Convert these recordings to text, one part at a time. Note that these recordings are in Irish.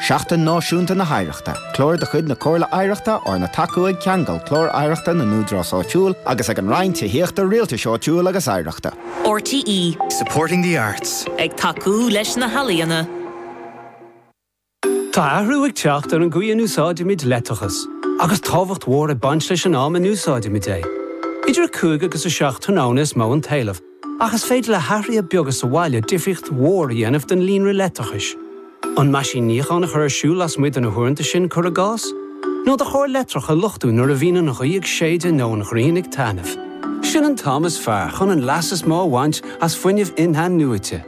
Seachtain Náisiúnta na hOidhreachta, Clár de chuid na Comhairle Oidhreachta arna tacú ag Ceangal, Clár Oidhreachta na nÚdarás Áitiúil, agus ag an Roinn Tithíochta, Rialtais Áitiúil agus Oidhreachta. RTÉ. Supporting the arts. Ag tacú leis na healaíona. Tá athrú ag teacht ar an gcaoi a n-úsáidimid leictreachas, agus tábhacht mhór ag baint leis an am a n-úsáidimid é. Idir a cúig agus a seacht tráthnóna is mó an t-éileamh. Ach is féidir le hathruithe beaga sa bhaile difríocht mhór a dhéanamh don líonra leictreachais. An meaisín níocháin a chur ar siúl lasmuigh de na huaireanta sin, cuir i gcás? Nó do charr leictreach a luchtú nuair a bhíonn an ghaoth ag séideadh nó an ghrian ag taitneamh? Sin an t-am is fearr chun an leas is mó a bhaint as fuinneamh in-athnuaite.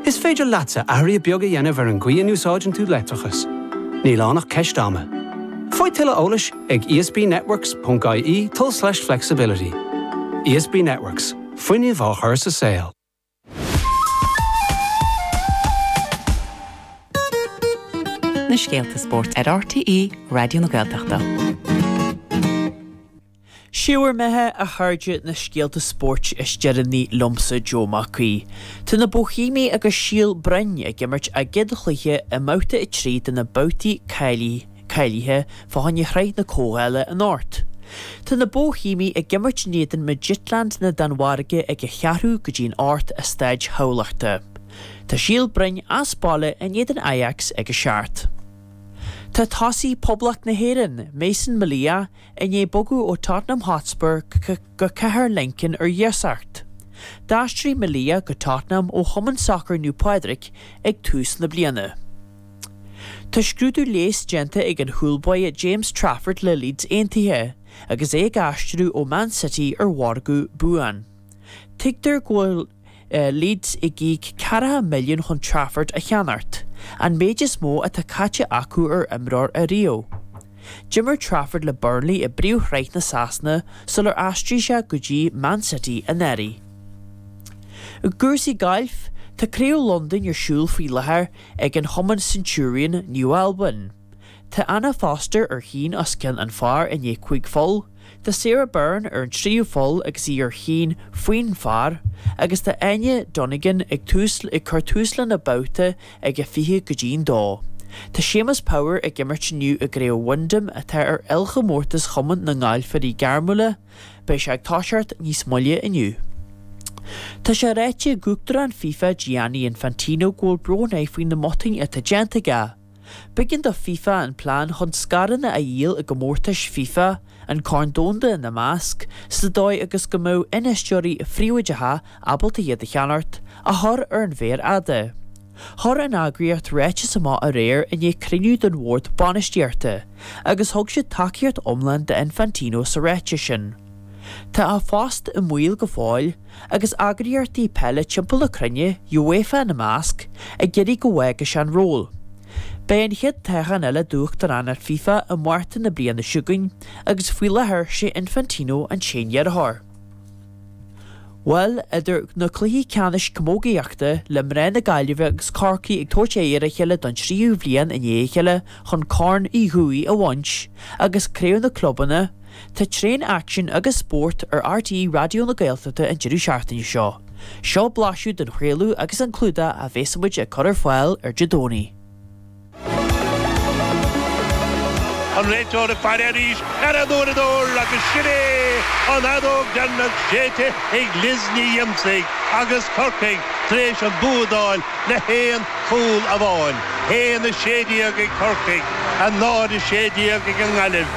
Is féidir leatsa athruithe beaga a dhéanamh ar an gcaoi a n-úsáideann tú leictreachas. Níl ann ach ceist ama. Faigh tuilleadh eolais ag esbnetworks.ie tulslais flexibility. ESB Networks. Fuinneamh á chur sa saol. na scéalta spóirt ar RTÉ Raidió na Gaeltachta. Sé bhur mbeatha, a chairde, na scéalta spóirt is deireanaí liomsa Joe Mac Aoidh. Tá na Bóihéamaigh agus Síol Broin ag imirt a gcéad chluiche i mbabhta a trí de na babhtaí cáilithe. Cáilithe, fá choinne Shraith na Comhdhála anocht. Tá na Bóihéamaigh ag imirt in éadan Midtjylland na Danmhairge ag a cheathrú go dtí an hocht i Staid Thamhlachta. Tá Síol Broin as baile in éadan Ajax ag a seacht. Tá tosaí Poblacht na hÉireann, Mason Melia, i ndiaidh bogadh ó Tottenham Hotspur go Cathair Lincoln ar iasacht. D'aistrigh Melia go Tottenham ó chumann sacair Naomh Pádraig ag tús na bliana. Tá scrúdú leighis déanta ag an chúl báire James Trafford le Leeds Aontaithe agus é ag aistriú ó Man City ar mhargadh buan. Tuigtear go bhfuil Leeds ag íoc ceathracha milliún chun Trafford a cheannacht, an méid is mó atá caite acu ar imreoir ariamh. D'imir Trafford le Burnley i bpríomhshraith na Sasana sular aistrigh sé go dtí Man City anuraidh. I gcúrsaí gailf, tá Craobh Londain ar siúl faoi láthair ag an chumann Centurion Naomh Albain. Tá Anna Foster ar chionn os cionn an phar i ndiaidh cúig pholl, tá Sarah Byrne ar an tríú pholl agus í ar chionn faoin phar, agus tá Áine Donegan ag tús ag cur tús lena babhta ag a fiche go dtí an dó. Tá Séamus Power ag imirt inniu i gcraobh Wyndham atá ar ilchomórtas chumann na ngalfairí gairmiúla, Beidh sé ag toiseacht níos moille inniu. Tá sé ráite ag Uachtarán fifa Gianni Infantino go bhfuil brón air faoi na mbotúin atá déanta aige. B'éigean do fifa an plean chun scaireanna a dhíol i gcomórtais fifa, an Corn Domhanda ina measc, sa dóigh agus go mbeadh infheisteoirí phríobháideacha ábalta iad a cheannacht, a chur ar an mhéar fhada. Chuir an eagraíocht ráiteas amach aréir i ndiaidh cruinniú den bhord bainistíochta agus thug siad tacaíocht iomlán d'Infantino sa ráiteas sin. Tá a phost i mbaol go fóill agus eagraíochtaí peile timpeall na cruinne, UEFA ina measc, ag iarraidh go bhfágfaidh sé an ról. Beidh an chéad toghchán eile d'uachtaránacht FIFA i Márta na bliana seo chugainn agus faoi láthair sé Infantino an t-aon iarrthóir. Bhuel, idir na cluichí ceannais camógaíochta, le mná na Gaillimhe agus Corcaigh ag tabhairt aghaidh ar a chéile don tríú bhliain i ndiaidh a chéile chun Corn Uí Dhufaigh a bhaint, agus Craobh na gClubanna, tá tréan aicsin agus spórt ar RTÉ Raidió na Gaeltachta an deireadh seachtaine seo. Seo blaiseadh den chraoladh agus an clúdach a bhéas muid ag cur ar fáil ar an Domhnach. An réiteoir ag faire arís ar an uaireadóir agus sin é an fheadóg dheireanach séidte ag Liz Ní Dhiomsaigh agus Corcaigh tar éis an bua a fháil le haon cúl amháin. 1-16 ag Corcaigh, 0-16 ag an nGaillimh.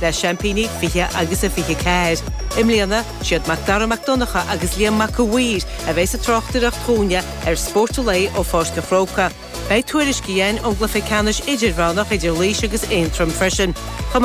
le seaimpíní 20 agus a 24. I mbliana, siad Mac Dara Mac Donncha agus Liam Mac a' Mhaoir a bheidh sa tráchtaireacht dúinne ar Spórt an Lae ó Pháirc a' Chrócaigh. Beidh tuairisc againn ón gcluiche ceannais idirmheánach idir Laois agus Aontroim freisin.